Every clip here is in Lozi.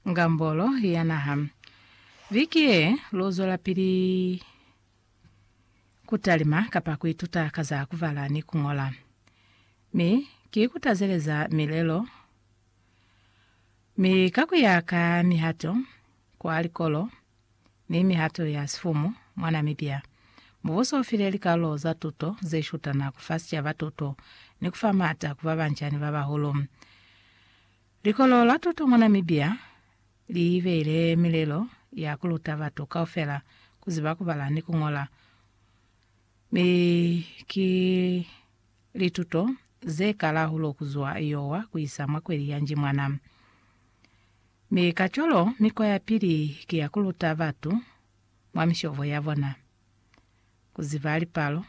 Ngambolo ya Naha. Viki ye, lu zwelapili ku talima kapa ku ituta ka za ku bala ni ku ñola. Mi ki kutazeleza milelo, mi ka ku ya ka mihato Kwa likolo ni mihato ya sifumu mwa Namibia, mubuso ufile likalulo za tuto ze shutana kufa sicaba tuto ni kufa maata ku babanca ni babahulu. Likolo la tuto mwa Namibia liibeile milelo ya kuluta batu kaufela kuziba kubala ni kuñola, mi ki lituto zekala hulu kuzwa Iowa kuisa mwa kweli ya Njimwana. Mi kacwalo mikwa ya pili ki ya kuluta batu mwa mishobo ya bona, kuziba lipalo,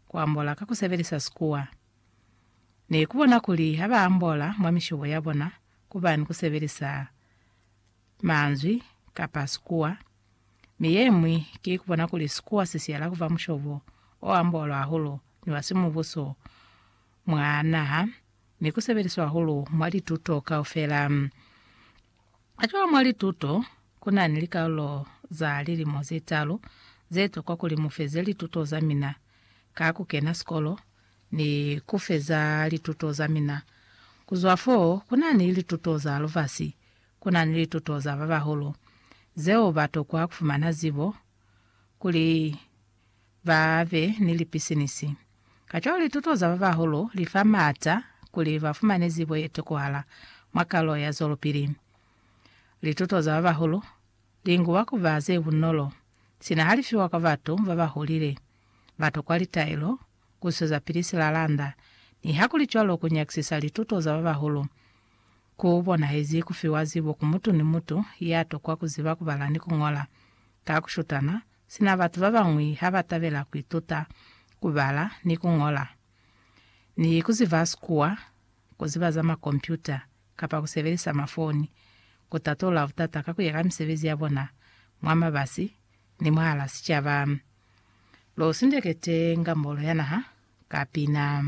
kuambola ka kusebelisa sikuwa, ni kubona kuli ha ba ambola mwa mishobo ya bona kuba ni kusebelisa manzwi kapa sikuwa, mi yemwi ki kubona kuli sikuwa si siyela kuba mushobo o ambolwa hahulu ni wa simubuso mwa naha ni ku sebeliswa hahulu mwa lituto kaufela. Kacwalo mwa lituto ku na ni likalulo za lilimo ze talu ze tokwa kuli mu feze lituto za mina, ka ku kena sikolo ni ku feza lituto za mina. Ku zwa f'o, ku na ni lituto za lubasi, ku na ni lituto za ba bahulu, zeo ba tokwa ku fumana zibo kuli. ba be ni lipisinisi. Kacwalo lituto za ba bahulu li fa maata kuli ba fumane zibo ye tokohala mwa kalo ya zwelopili. Lituto za ba bahulu li nguba ku ba ze bunolo sina ha li fiwa kwa batu ba ba hulile. Ba tokwa litaelo ku swezapili silalanda. Nihakulicwalo, ku nyakisisa lituto za ba bahulu ku bonahezi ku fiwa zibo ku mutu ni mutu ya tokwa ku ziba ku bala ni ku ñola ka ku shutana Sina batu ba bañwi ha ba tabela ku ituta ku bala ni ku ñola, ni ku ziba Sikuwa, ku ziba za makompyuta, kapa ku sebelisa mafoni, ku tatulula butata ka ku ya ka misebezi ya bona mwa mabasi ni mwahal'a sicaba. Lu sindekete Ngambolo ya Naha ka pina.